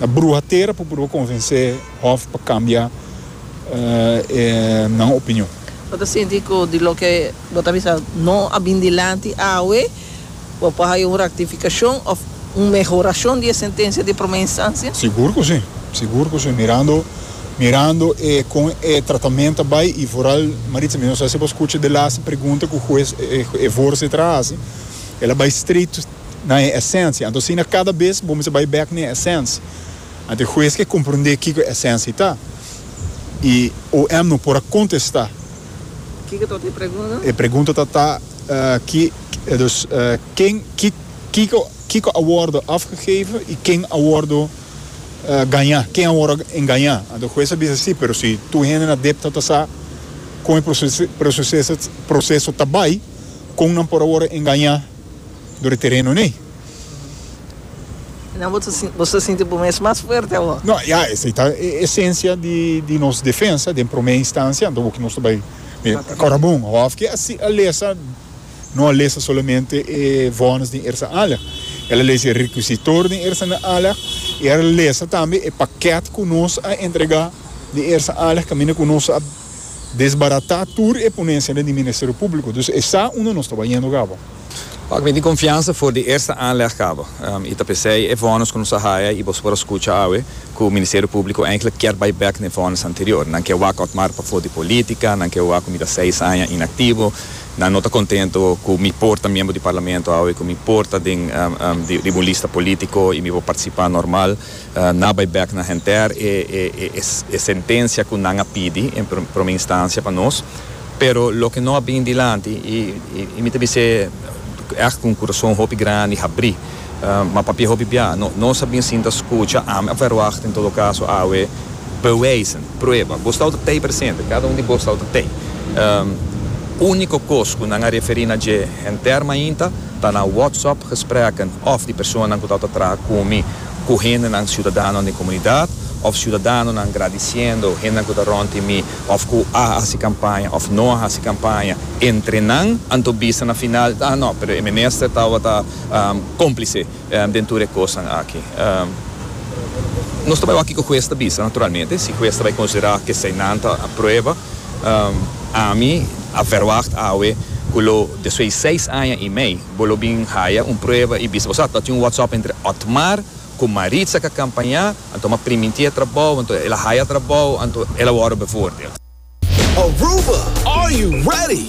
Na bruha tera por prueba convence hof pa cambia e nan opinion. Bo ta sinti cu di loke bo ta bisa no a bin dilanti awe, bo por haya un rectificacion of un mehoracion di e sentencia di prome instancia? Sigur cu si, sigur cu si. Mirando, mirando e con e tratament ta bay y vooral Maritza, mi no sa si bo scucha de laatste pregunta cu juez, e voorzitter a haci, el a bay straight na e esensia. Anto asina kada bes bo mester bai bek na e esensia. Anto e hues ke komprondé kiko e esensia ta. I OM no por a kontestá. Kiko tabata e pregunta? E pregunta tabata ki, dus, ken, ki, kiko, kiko a wòrdu afgegeven i ken a wòrdu gañá, ken a wòrdu engañá. Anto e hues a bisa sí, pero si tur hende na dep tabata sa kon e proseso ta bai, kon nan por a wòrdu engañá? dor e tereno n'ey. Nan bo ta sinti bo mes mas fuerte awor. No, ya esey ta e esencia di nos defensa den prome instancia, anto awor ki nos ta bay Corabon of ki asi a lesa, no a lesa solamente e vones den Ersa Alleg, el a lesa e requisitor den Ersa na Alleg y el a lesa tambe e paket cu nos a entrega den Ersa Alleg caminda cu nos a Desbaratá tur e ponencia den di Ministerio Público, dus e sa unda nos taba yendo caba. Pak mi tin confiansa for di eerste aanleg caba, y ta p'esey e vonnis cu nos a haya y boso por a scucha awe cu Ministerio Público eigenlijk kier bay bek n'e vonnis anterior. Nan kier wak Otmar pa for di politica, nan kier wak cu mi ta seis aña inactivo, nan no ta contento cu mi por ta miembro di Parlamento awe, cu mi por ta den di un lista politico y mi por participá normal. Na bay bek na henter e sentencia cu nan a pidi en prome instancia pa nos, pero loke no a bin dilanti y mi ta bis'e echt cu un curazon hopi grandi habri, ma papia hopi bia, nos a bin sinta scucha am a verwacht en todo caso awe bewijzen, prueba, bo stau ta tey presente, cada un di bo stau ta tey. Unico cos cu nan a referi na dje henter mainta ta na WhatsApp gesprekken of di personanan cu tau ta traha cu mi, ku hendenan siudadanonan den komunidat òf siudadanonan gradisiendo hendenan ku ta rònti mi òf ku a hasi kampaña òf no a hasi kampaña entre nan anto bisa na final ta no pero e minister tabata kòmplise den tur e kosnan aki. Nos ta bai wak kiko hues ta bisa naturalmente si hues ta bai konsiderá ku eseinan ta prueba ami a vèrwagt awe ku lo despues di seis aña i mei Bo lo bin haya un prueba y bisa. Osa ta tin un WhatsApp entre Otmar cu Maritza ca campaña, anto ma priminti a trabao, anto el a haya trabao, anto el a worde bevoordeeld. Aruba, are you ready?